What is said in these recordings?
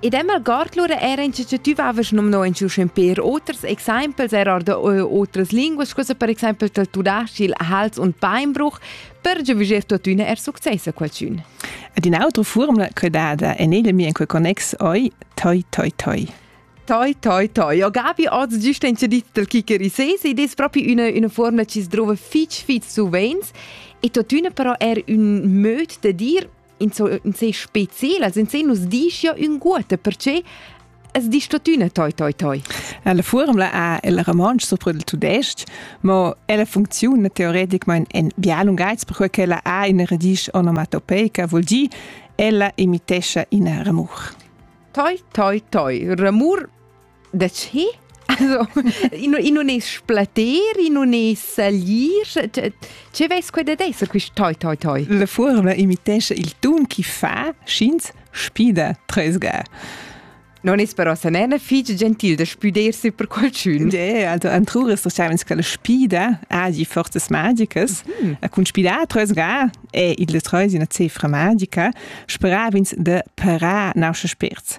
In dem algord lura era initiativavas numno in schemper oters exempels er da otras linguas, cosa per exempel del tudascil Hals und Beinbruch, per giuviger tuttina er success a qualcun. Ed in autra formula che dada en elemi in quel connex oi toi toi toi. Toi, toi, toi. Ja, Gabi, oz giusta in dit del Kicherisese ed es proprio una, una formula che si trova fitch, fitch suveins e tuttina però er un möd de dir in so in se specielas, in se nus dischia ün guote, perché es di statüna toi toi toi. La formula ha il romansch sopra il tudesc, ma ella funcziona teoreticament in bial un geiz perché quella ha in radice onomatopeica, vuol dir ella imitescha in ramur. Toi toi toi, ramur da che? Also, in, in non es splater, in non es salir. Che veis quei da d'esser quist toi, toi, toi? La furma imitesce il tun chi fa, sch'ins spida tresga. Non es però sa nena fig gentil da spüdersi per qualchün. Ja, also antruras das savens che la spida ha die forzas magicas. Mm. Con spidar tresga è il treus una cifra magica, speravins de parar nausche spirts.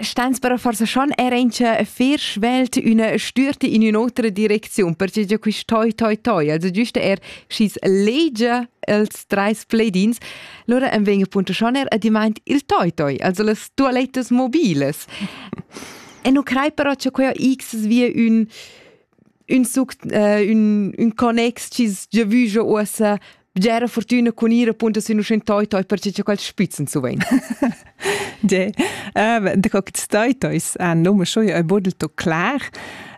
Stans per forsa schon era in che fer svelt una stürti in un'altra direcziun, perché già quist toi toi toi, also giuste er schis legia els treis pledins, lora am veng appunto schon er ad imaint il toi toi, also las toilettas mobiles. E non crei però che quella x via un ün suct, äh, ün, ün connex chi s'gia vügia uossa bgera fortüna cun ir appunto sün uschè toi toi perche cha quels spitzen zu vain. De. Uh, de co che stai tois an nome scho e bodel to clar.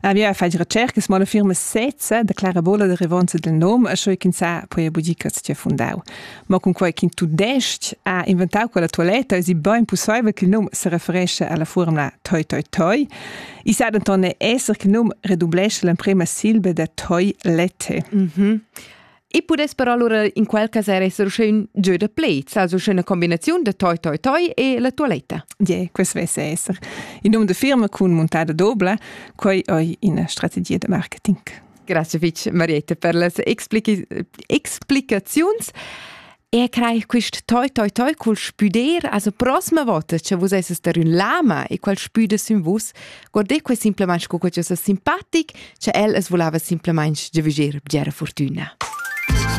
Uh, ja fai recercas mal firma sezza de clara bola de revanza del nome e scho kin sa poi budica tia fundau. Ma con quei kin tu dest a inventau quella toiletta es i bain possibel che il nome se referisce alla formula toi toi toi. I sa denton esser che num redublescha l'emprema silba da toi lette. Mm -hmm. E pudess però allora in quel cas er essere schön gieu da play, sa so schöna combinaziun da toi toi toi e la toiletta. Yeah, questo vesse essere. Il nome de firma con montada doble, quei è una strategia de marketing. Grazie Fitch Marietta per le explicazioni. Er creich quist toi toi toi cul spüder, also prossima volta che vus esses der ün lama e qual spüde sün vus, guardé que simplement sco que es simpatic, che el es volava simplement de viger bgera fortuna.